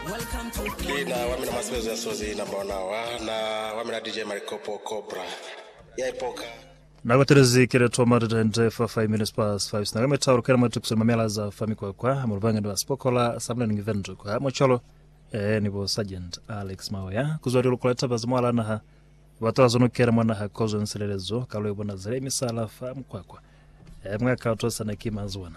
Ki na wamina mwa sebezo ya sozi number ona wa na wamina DJ Malikopo Cobra ya ipoka. Na batelezi kele to ma data ende fa 5 minutes past 5 sina ka metauro kela mwa tukuso ni mamela za fa mikwakwa mu lubanga ni ba spokola sa mlani ngi vendu kwa mo cholo eh ni bo sergeant Alex Maoya kuzwa di lukula taba za mwala naha ba tola zono kela mwa naha kozo nsilelezo ka lwe bona zile misala fa mukwakwa eh mwa ka to sana ki mazuwana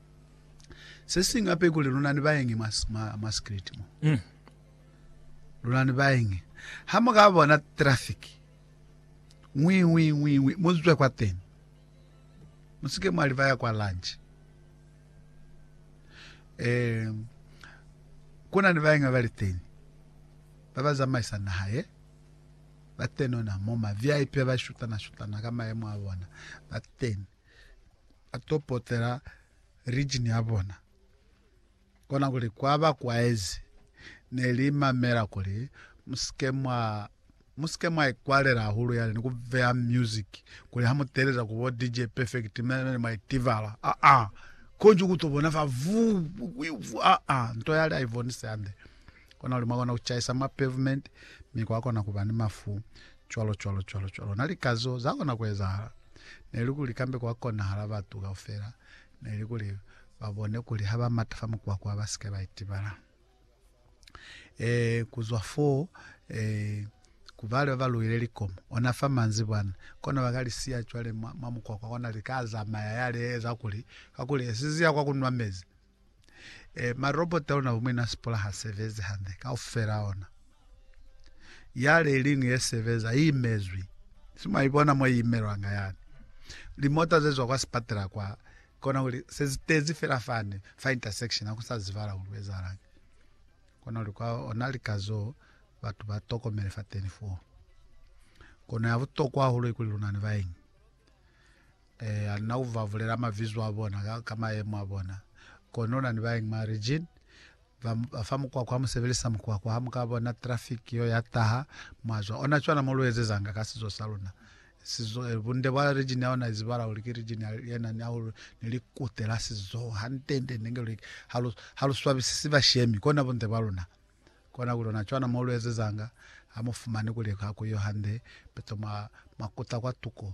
Se siñwi hape kuli luna ni baengi mwa, mwa, mwa street mo. Mm. Luna ni baengi. Ha mu ka bona traffic, ngwi, ngwi, ngwi, ngwi, mu zwe kwa teni. Mu si ke mwa livaya kwa lunch. Eh, ku na ni baengi ba ba li teni, ba ba zamaisa naha ye, ba tenona mo, ma VIP ba shutana, shutana ka maemo a bona, ba teni. ba to potela region ya bona kona kuli kwa ba kwaezi ne li mamela kuli musike mwa musike mwa ikwalela hahulu yale ni ku veya music kuli ha muteleza ku bo DJ perfect mene mwa itivala a a konje ku to bona fa vu a a nto yale a ivonise ande kona kuli mwa kona ku chaisa ma pavement mi kwa kona ku ba ni mafu Cwalo, cwalo, cwalo, cwalo. Na lika zo za kona ku ezahala. Ne li kuli kambe kwa konahala batu kaufela ne li kuli ba bone kuli ha ba mata fa mukwakwa ba sike ba itibala. Eh, ku zwa foo, eh, ku bale ba ba luhile likomo, ona fa manzibwana, kono ba ka li siya cwale mwa, mwa mukwakwa, kona li ka zamaya, ya li eza kuli, kakuli esiziya kwa ku nwa mezi, Eh, marobota ona umwe na sipola ha sebezi hande kaufela ona. Yale iling ye sebeza i imezwi. Sima ibona mo imelwanga yani. Limota zezwa kwa sipatela kwa kona uli sezitezi fela fane fa intersection ha kusa zivala uli wezalang. Kona uli kwa ona likazo batu ba tokomele fa 24. Kona ya butokwa hahulu ikuli luna ni baeng. Eya, na u va bulela mabizo a bona ka, ka mayemo a bona. Kono una ni bañwi mwa region ba, ba fa mukwakwa, ha mu sebelisa mukwakwa, ha mu ka bona traffic yo ya taha, mwa zwa. Ona cwana mo lu ezezanga ka sizo sa luna. Sizo, eh, bunde bwa region ya ona izibala kuli ki region ya, ye nani hahulu ni likute la sizo. Hantende nde nge lu, ha lu, ha lu swabisisi bashemi, kona bunde bwa luna. Kona kuli ona cwana mo lu ezezanga, ha mu fumani kuli ha ku yo hande, peto mwa, mwa kuta kwa tuko,